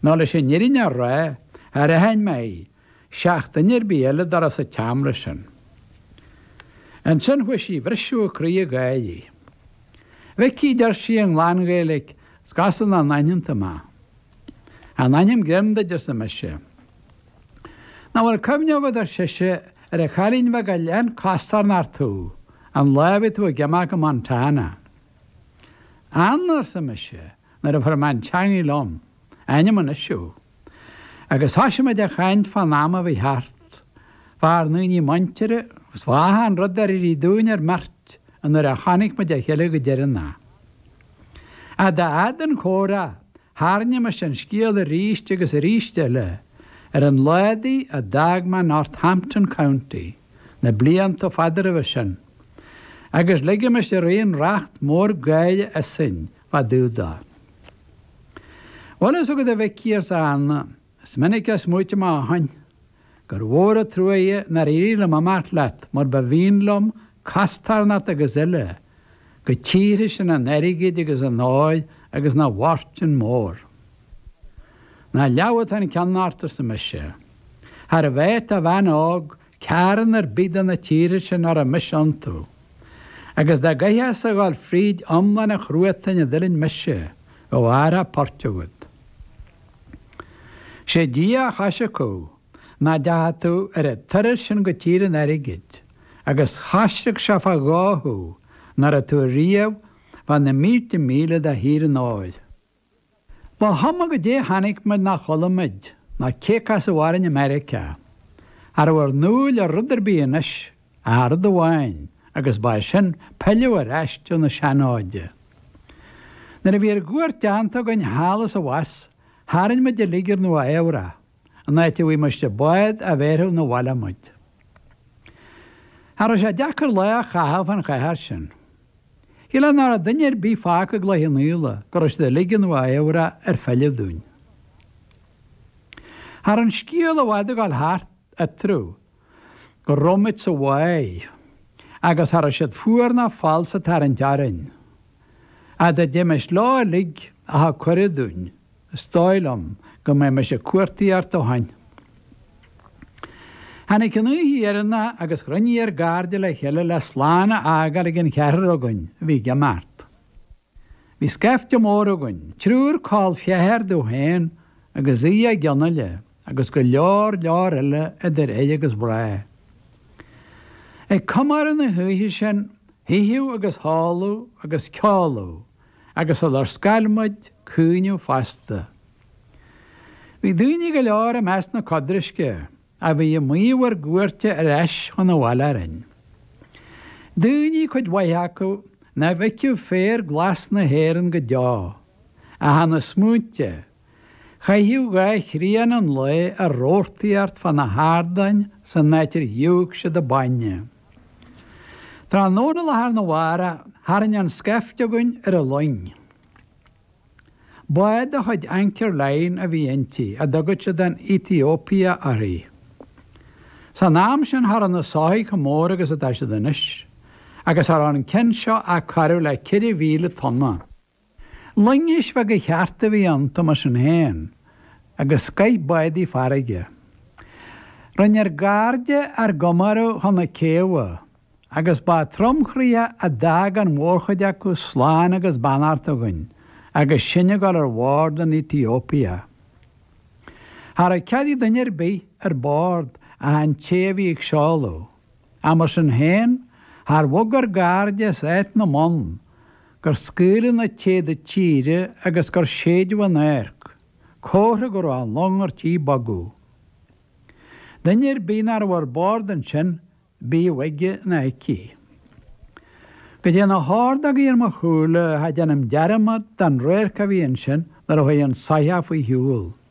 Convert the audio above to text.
Nó leis an fhírinne a rá char aithin mé í seach duine ar bith eile dá raibh sa tseamra sin. Ansin chuaigh sí a bhriseadh a croí ag gáirí. A Mhicí a deir sí i nglan Ghaeilic 's go as an a n-aintheanta maith. In ainm Chroim duit arsa mise. Ná fuil cuimhne agat ar sise ar an chailín bheag a lean costarnocht thú an lá a bhí tú ag imeacht go Montana. Anna arsa mise. nuair a fuair mé an teangaidh liom, rinn Anna suí, agus thoisigh muid a chaint fán am a bhí thart, fár ndaoine muinteartha, agus fá achan rud ar éirigh dúinn ár mbeirt ón uair a chonaic muid a chéile go deireanach ach dá fhad an comhrá, tharraingímis an scéal aríst agus aríst eile ar an lá údaí a d'fhág mé Northampton County na blianta fada roimhe sin, agus ligimis araon racht mór gáire asainn fá dtaobh de. Bhfuil a fhios agad a Mhicí arsa Anna, is minic a smaoitigh mé ó shin gur mhór an truaighe nár éirigh liom imeacht leat mar ba mhian liom costarnocht agus uile go tíortha sin an airgid agus an óir agus na bhfortún mór. Ná leamh atá an ceann ort arsa mise. Cha raibh áit do bhean óg Cearn ar bith de na tíortha sin a raibh mise iontu. Agus dá gcaithfeá-sa a dhul fríd iomlán an chruatain a d'fhuiling mise, bheadh ábhar buartha agad. 'Sé Dia a choisric thú, ná deachaigh tú ar an turas sin go Tír an Airgid, agus choisric sé fá dhó thú, ná raibh tú riamh fá na mílte míle de Thír an Óir. Ba chuma goidé chonaic muid ná chuala muid, ná cé casadh orainn i Meiriceá. Cha raibh ár n-iúl ar rud ar bith anois ach rud amháin agus ba é sin pilleadh ar ais chun na seanáite. Nuair a bhí ár gcuairt deánta againn thall is abhus tharraing muid uilig ar Nua Eabhrac. an áit a bhfaighimis bád a bhéarfadh 'na bhaile muid. Cha raibh sé deacair lá a chaitheamh fán chathair sin. Shíl mé ná raibh duine ar bith fágtha i gCloich Cheann Fhaola nó go raibh siad uilig i Nua Eabhrac ar filleadh dúinn. Cha raibh an scéal i bhfad ag dul thart eatarthu go raibh muid sa bhaile agus cha raibh siad fuar ná falsa ag tarraingt orainn. Dá dtéimis leo uilig a thug cuireadh dúinn. Is dóigh liom go mbeimis ag cuartaíocht ó shin. Tháinig an oíche dheireanach agus chruinnigh ár gcairde le chéile le slán a fhágáil ag an cheathrar againn a bhí ag imeacht. Bhí scaifte mór againn, triúr col ceathar domh féin agus Aodh Mag Fhionnaile agus go leor leor eile idir fhir agus mhná. Ag comóradh na hoíche sin, hitheadh agus hóladh agus ceoladh, agus sular scoir muid caoineadh fosta. Bhí daoine go leor i measc na codraisce a bhí ag maíomh ár gcuairte ar ais chun an bhaile orainn. Daoine, cuid mhaith acu, nach bhfeicfeadh féar glas na hÉireann go deo, a tháinig smaointe Chaitheadh dhá thrian an lae ag reathaigh thart fá na hardáin san áit ar shúigh siad an bainne. Tráthnóna lá arna mhárach tharraing an scaifte againn ar an luing. Bád de chuid Anchor Line a bhí inti, a dtugadh siad an Ethiopia uirthi. San am sin cha rabh na soithigh chomh mór agus atá siad anois, agus cha rabh an ceann seo ach corradh le ceithre mhíle tonna. Loingis bheaga chearta a bhí iontu mar sin féin, agus scoith bádaí farraige. Rinne ár gcairde ár gcomóradh chun na céibhe, agus ba tromchroíoch a d'fhág an mhórchuid acu slán agus beannacht againn agus sinn ag dul ar bord an Ethiopia. Cha rabh cead ag duine ar bith ar bord ach an té a bhí ag seoladh. Ach mar sin féin, char bhog ár gcairde as áit na mbonn, gur scaoileadh na téada tíre agus gur séideadh an adharc, comhartha go raibh an long ar tí bogadh. Duine ar bith nach raibh ar bord ansin, bíodh aige ná aici. Go dté na hordógaí ar mo shúile, cha déanaim dearmad den radharc a bhí ansin nuair a chuaigh an soitheach faoi shiúl.